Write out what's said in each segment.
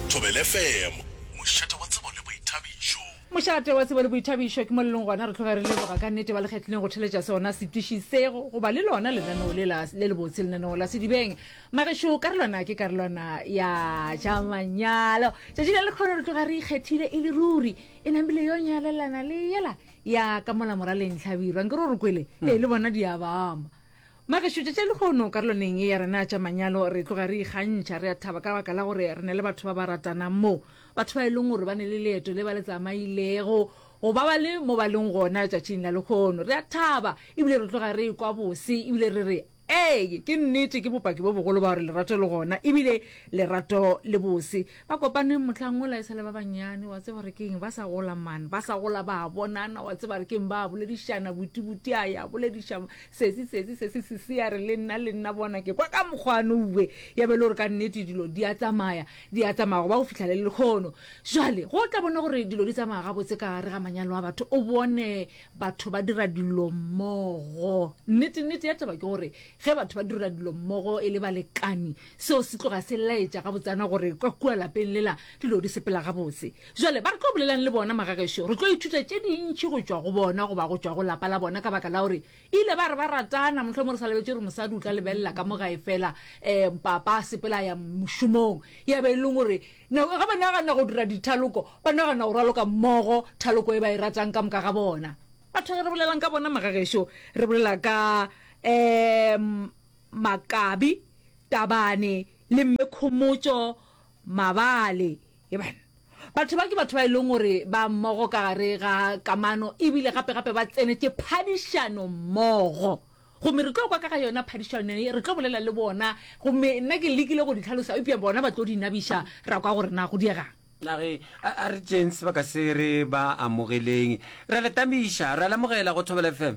Thobele FM, mošate wa tsebo le boithabišo. Mošate wa tsebo le boithabišo ke mo le leng gona. Re tloge re leboga ka nnete ba le kgethileng go theletša sona setiši se go goba le lona lenaneo le la le lebotse lenaneo la sedibeng magešo karolwana ke karolwana ya tša manyalo tšatši le lekgono re tloga re ikgethile e le ruri e nambile yo nyalelana le yela ya ka mola moraleng tlhabirwa nke ro re kwele ee le bona diabama Bagešo, tšatši lehono karolwaneng ye ya rena tša manyalo re tloga re ikgantšha, re a thaba ka baka la gore re na le batho ba ba ratanang mo, batho ba e leng gore ba ne le leeto le ba le tsamailego go ba ba le mo ba leng gona tšatšing la lehono. Re a thaba ebile re tloga re ekwa bose ebile re re, Ee, ke nnete, ke bopaki bo bogolo ba gore lerato le gona ebile lerato le bose. Ba kopane mohlang wola e sa le ba banyane, wa tseba gore ke eng, ba sa gola man, ba sa gola ba a bonana, wa tseba gore ke eng, ba a boledišana, Buti, Buti a ya bolediša Sesi, Sesi, Sesi, Sisi ya re, le nna, le nna, bona ke kwa ka mokgwa no we, ya be e le gore ka nnete dilo di a tsamaya, di a tsamaya, go ba go fihla le lekgono. Jwale, go tla bona gore dilo di tsamaya gabotse ka gare ga manyalo a batho, o bone batho ba dira dilo mmogo. Nnete, nnete ya taba ke gore ge batho ba dira dilo mmogo e le balekani, Seo se tloga se laetša gabotsana gore kwa kua lapeng lela dilo di sepela gabotse. Bjale, ba re tlo bolelang le bona, magagešo? Re tlo ithuta tše dintši go tšwa go bona goba go tšwa go lapa la bona ka baka la gore e ile ba re ba ratana. Mohlomongwe re sa lebetše gore mosadi o tla lebelela ka mo gae fela um papa a sepela a ya mošomong, ya be e leng gore nako ge ba nagana go dira dithaloko ba nagana go raloka mmogo thaloko e ba e ratang ka moka ga bona. Batho ge re bolelang ka bona, magagešo, re bolela ka um. Makabi, Tabane le Mme Khomotšo Mabale. Yeban. Batho ba ke batho ba e leng gore ba mmogo ka gare ga kamano e bile gape-gape ba tsenetše phadišano mmogo. Gomme re tlo kwa ka ga yona phadišano ye, re tlo bolela le bona. Gomme nna ke lekile go di tlhalosa, eupša bona ba tlo di nabiša, ra kwa gore na go diega'ng. A re, A, a re tšeeng sebaka se re ba amogeleng. Re a le tamiša, re a le amogela go Thobela FM.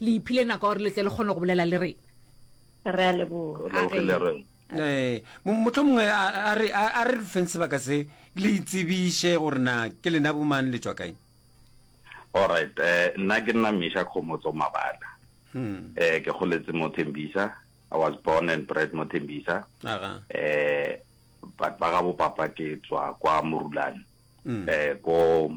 Le iphile nako ya gore le tle le kgone go bolela le rena. Re a leboga. Re lebogile rre. Ee, mo- motlho mongwe a a re a a re re feng sebaka se le itsebiše gore na ke lena bomang le tšwa kae. Alright, eh, nna ke nna Misha Khomotso Mabala. Hmm. Eh, ke goletse mo Tembisa. I was born and bred mo Tembisa. Aga. Eh, but ba ga bo papa ke tswa kwa Morulane. Mm. Eh, ko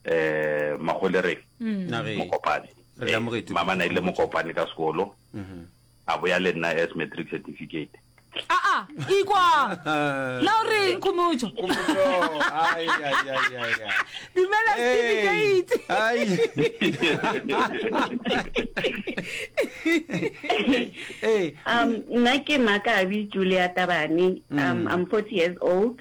um magolereng mm. mokopane eh, mama na ile mokopane ka sekolo mm-hmm. a boya le nna as matric certificate aa ikwa la o reng khomotso dumela certificate um nna ke makabi julia tabane um mm. i'm forty years old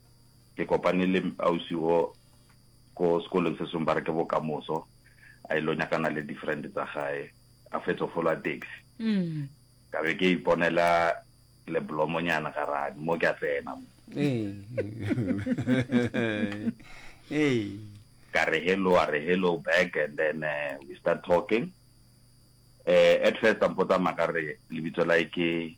ke kopane le ausi wo ko sekolong se sengwe ba re ke bokamoso a ile nyakana le different tsa gae a fetso folwa taxi mm. ka be ke iponela le blomonyana garane mo ke a tsena mo ka re hello a re hello back and then uh, we start talking uh, at first ampotsa maka re lebitso la ke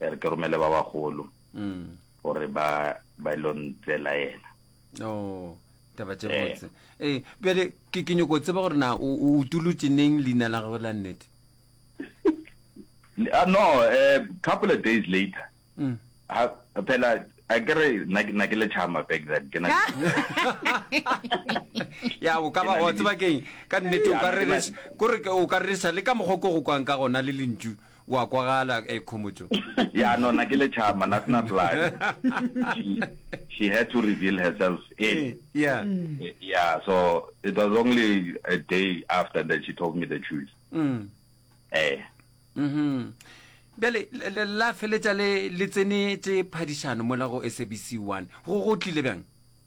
e re ke romele ba bagolo mm. gore ba ba ilo ntsela ena oh taba tse eh. botse ee eh, bjale ke ke nyoko tseba gore na o utolotse neng leina la gagwe la nnete ah, no eh, couple of days later mm. phela a kere na ke le chama back then ke na ya o ka ba o tseba keng ka nnete o ka re o ka re sa le ka mogoko go kwang ka gona le lentšu O a kwagala, eh, Khomotšo. Ya no, na ke lechama, na sena blood. She, she had to reveal herself in. Eh, yeah. Mm. Eh, yeah, so it was only a day after that she told me the truth. Mm. Eh. Mm-hmm. Bjale, la feletša le, le tsenetše phadišano mola go SABC 1. Go, go tlile bjang?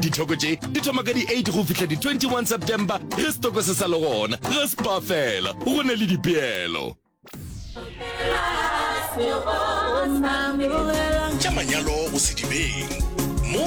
Dithoko tše di thoma ka di-8 go fihla di-21 September ge setoko se sa le gona. Ge spa fela go na le dipeelo. Tša manyalo go sedibeng.